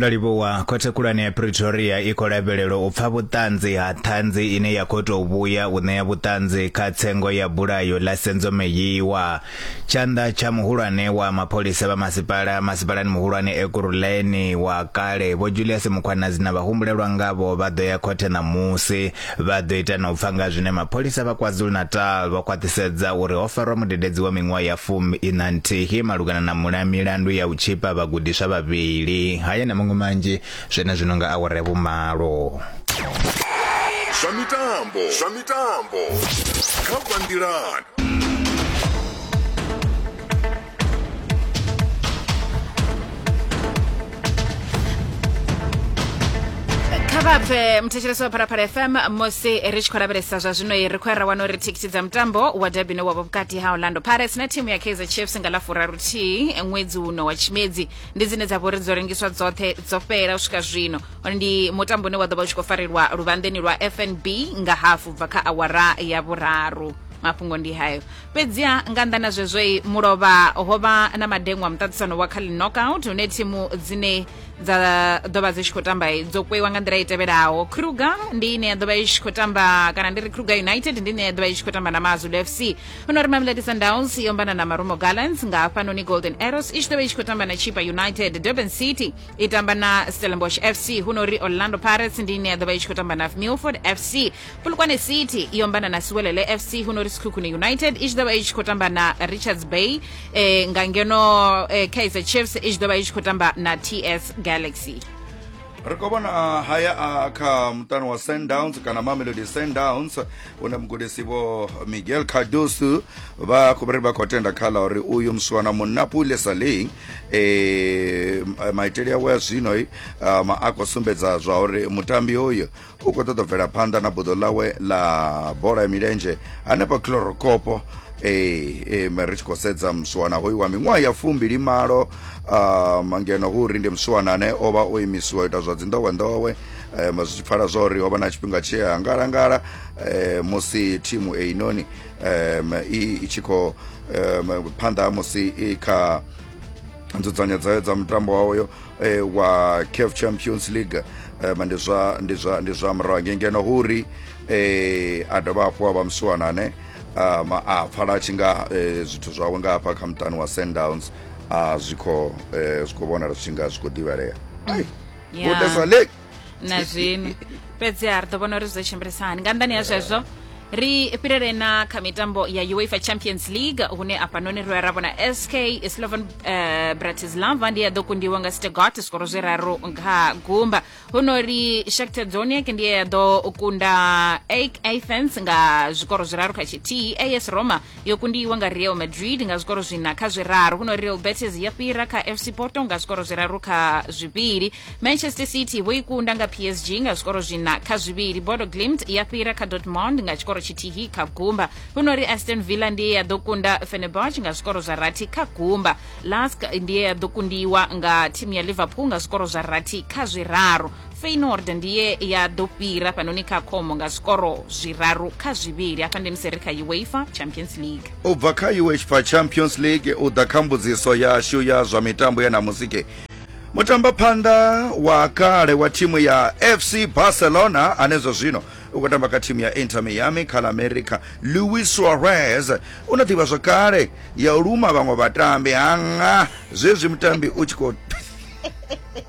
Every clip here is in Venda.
ndo livhuwa khothe khulwane ya pretoria i khou lavhelelwa u pfa vhuṱanzi ha ṱhanzi ine ya khou tou vhuya u ṋea vhuṱanzi kha tsengo ya bulayo ḽa senzomeyiwa tshanḓa tsha muhulwane wa mapholisa vha masipala masipalani muhulwane ekuruleni wa kale vho julius mukhwanazi na vhahumbulelwa ngavho vha ḓo ya khothe ṋamusi Vha ḓo ita na u pfa nga zwine mapholisa vha KwaZulu-Natal vha khwaṱhisedza uri ho farwa mudededzi wa miṅwaha ya fumi ina nthihi malugana na mula milandu ya u tshipa vhagudiswa vhavhili. Haya na maṅwe manzhi zwenezwino nga awara ya vhumalo. Zwa mitambo zwa mitambo kha Vha Nḓilani. kha vha bve muthetshelesi wa pharaphala fm musi ri tshi khou lavhelesa zwa zwino ri khou ya ra wana uri thikiti dza mutambo wa derby no wavha vhukati ha orlando pirates na thimu ya kaizer chiefs nga ḽa furaruthihi ṅwedzi uno wa tshimedzi ndi dzine dza vha uri dzo rengiswa dzoṱhe dzo fhela u swika zwino Hone ndi mutambo une wa ḓo vha u tshi khou farelwa luvhanḓeni lwa fnb nga hafu bva kha awara ya vhuraru mafhungo ndi hayo fhedziha nga nnḓa na zwezwo mulovha ho vha na madengwa muṱaṱisano wa kha knockout hune thimu dzine dza ḓo vha dzi tshi khou tamba dzo kweiwa nga nḓila i tevhelaho kruger ndi ine ya ḓo vha i tshi khou tamba kana ndi ri kruger united ndi ine ya ḓo vha i tshi khou tamba na mazulu fc huno ri mamelodi sundowns yo mbana na marumo gallants nga hafhanoni golden arrows i tshi ḓo vha i tshi khou tamba na chipa united durban city i tamba na stellenbosch fc huno ri orlando pirates ndi ine ya ḓo vha i tshi khou tamba na milford fc polokwane city i ombana na siwelele fc huno ri sikhukhune united i tshi ḓovha i tshi khou tamba na richards bay eh, nga ngeno eh, kaizer chiefs i tshi ḓovha i tshi khou tamba na ts galaxy ri khou vhona ah, haya a kha muṱani wa sundowns kana mamelodi sundowns une mugudisi vho miguel cardoso vha khou ri vha khou tenda kha ḽa uri uyu muswana munapule saling um maitele awe a zwino um, a khou sumbedza zwa uri mutambi hoyu u khou ṱoḓa bvela phanḓa na buḓo ḽawe ḽa bola ya milenzhe hanefha chlorocopo ee eh, eh, ri tshi khou sedza muswana hoyu wa miṅwaha ya fumbili malo um, ngeno hu uri ndi muswana ane o vha o imisiwa ita zwa dzindowendowe um, zwi tshi pfala zwa uri ho vha na tshifhinga tshi a ngalangala um, musi thimu einoni um, i tshi khou um, phanḓa musi i kha nzudzanyo dzayo dza mutambo wawoyo eh, wa caf champions league eh, ma ndi zwa ndi zwa ndi zwa murahu hangei ngeno hu uri eh, a dovha hafhu a vha musiwana ane ah, ma- a pfala a tshi nga eh, zwithu zwawe nga hafha kha muṱani wa sundowns a zwi khou eh, zwi khou vhonala zwi tshi nga zwi khou ḓivhalea ai Yeah. vhotesa le na zwiṅwe fhedzi ha ri ḓo vhona uri zwi ḓo tshimbilisa hani nga nnḓani ya zwezwo ri fhirele na kha mitambo ya uefa champions league hune afhanoni ri ra vhona sk slovan uh, eh, bratislava ndi ya ḓo kundiwa nga stegot skoro zwi raru nga gumba huno ri shakter doniak ndi ya ḓo kunda ak athens nga zwikoro zwiraru kha tshithihi as roma yo kundiwa nga real madrid nga zwikoro zwina kha zwiraru huno real betis ya fhira kha fc porto nga zwikoro zwiraru kha zwivhili manchester city vho i kunda nga psg nga zwikoro zwina kha zwivhili bodo glimt ya fhira kha dortmund nga tshikoro tshithihi kha gumba huno ri aston villa ndiye ya ḓo kunda fenerbach nga zwikoro zwa rathi kha gumba lask ndiye ya ḓo kundiwa nga thimu ya liverpool nga zwikoro zwa rathi kha zwiraru feyinord ndiye ya ḓo fhira fhanoni kha khomo nga zwikoro zwiraru kha zwivhili hafha ndi musi ri kha uefa champions league u bva kha uefa champions league u ḓa kha mbudziso yashu ya zwa mitambo ya namusike mutamba phanḓa wa kale wa thimu ya fc barcelona ane zwa zwino u khou tamba kha thimu ya inter miami kha la america louis suarez u na ḓivha zwakale ya u luma vhaṅwe vhatambi hanga zwezwi mutambi u tshi khou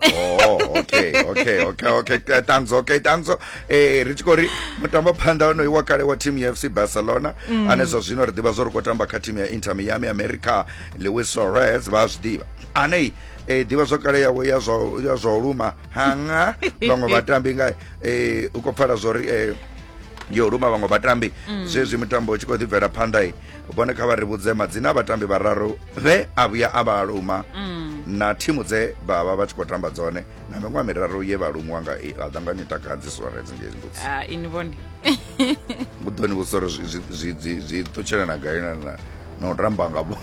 oh okay okay okay okay eh, tanzo okay tanzo eh ri tshi khou ri mutambo phanḓa onoyi wa kale wa team ya fc barcelona mm. ane zwa zwino ri ḓivha zwo ri khou tamba kha team ya inter miami america lewis suarez vha a zwi ḓivha anei eh ḓivha zwo kale yawe ya zwa ya zwa luma hanga vhaṅwe vhatambi nga eh u khou pfala zwo ri eh yo luma vhaṅwe vhatambi mm. zwezwi mutambo u tshi khou ḓi bvela phanḓa vhone kha vha ri vhudze madzina a vhatambi vhararu vhe a vhuya a vha luma mm. na thimu dze vha vha vha tshi khou tamba dzone na miṅwaha miraru ye vha lumiwa nga i a ḓanganya takadzi suarez ngei mbudzi ah, ini vhone u ḓo ni vhudza uri zwi ṱutshela na gai na u tamba nga bo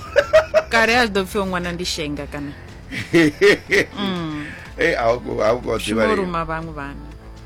kale a zwi ḓo pfhi o ṅwana ndi shenga kana mm. ei a u khou ḓivha lima vhaṅwe vhana